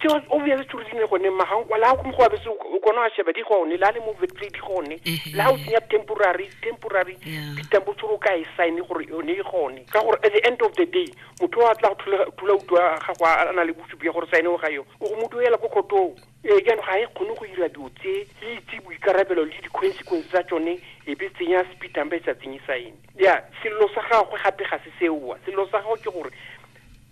Ke wa- o bjale tšo rile gone magankwa la go go abese o kona wa sheba di gone la le mo vetplay di gone Ehe. la o tsenya temporary temporary Yeah. ditambo tšore o ka e sign gore yone e gone ka gore at the end of the day motho wa tla go thula- thula utu wa gago a a na le bosupi ya gore sign o ga yo o go mo duela ko khotong ee jaanong ga e kgone go dira dilo tse e itse boikarabelo le di-consequence tsa tsone e be tsenya speed number e sa tsenye sign ya sello sa gagwe gape ga se seoa sello sa gagwe ke gore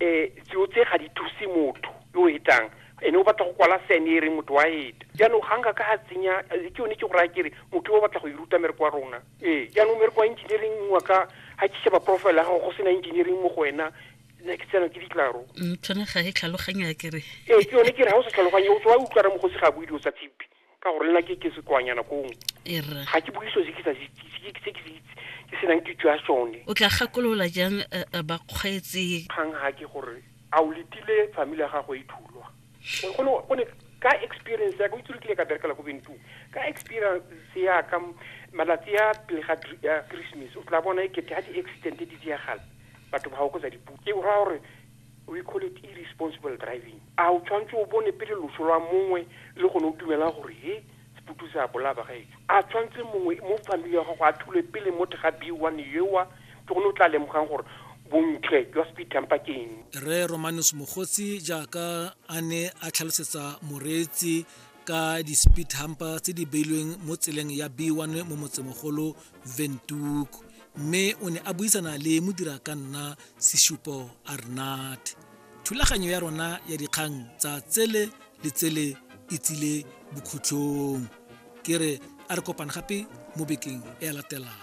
um tseo tse ga di thuse motho yo o hetang ene o batla go kwala sene e reng motho wa heta jaanong ga nka ka ga tsenya eh, ke yone ke go raya kere motho yo o batla go e ruta mereko wa rona ee jaanong mereko wa engineering wa ka ga ke sheba profile ya gago go sena engineering mo go wena ne ke tsena ke ditlaro Mm, tshwane ga e tlhaloganya kere ee ke yone ke re ga o sa tlhaloganye o tswa utlwara mogosi ga a bue dilo tsa tshipi ka gore nna ke ke sekoanyana kong erra ga ke bue so se ke sa se itse se ke se ke se itse ke senang kitso ya sone o tla gakolola jang eh, eh, bakgweetsi kgang ga ke gore a o letile family ya gago e thulwa O- gone gone ka experience ya ka o itse re kile ka berekela ko bentu ka experience ya ka m- malatsi a pele ga dri- ya christmas o tla bona e kete ga di-accident di diagala batho ba ga o kotsa dipuke o raya gore We call it irresponsible driving. A o tshwanetse o bone pele loso lwa mongwe le gone o dumela gore he Sputu se a bolaya bagaetsho? A tshwanetse mongwe mo family ya gago a thulwe pele mo thega B1 yewa ke gone o tla lemogang gore bontle jwa speed tamper ke eng? Rre Romanus Mogotsi jaaka a ne a tlhalosetsa moreetsi ka di-speed humper tse di beilweng mo tseleng ya b1 mo motsemogolo ventuk mme o ne a buisana le modira ka nna seshupo arnat thulaganyo ya rona ya dikgang tsa tsele le tsele e tsile bokhutlhong ke re a re kopane gape mo bekeng e latelang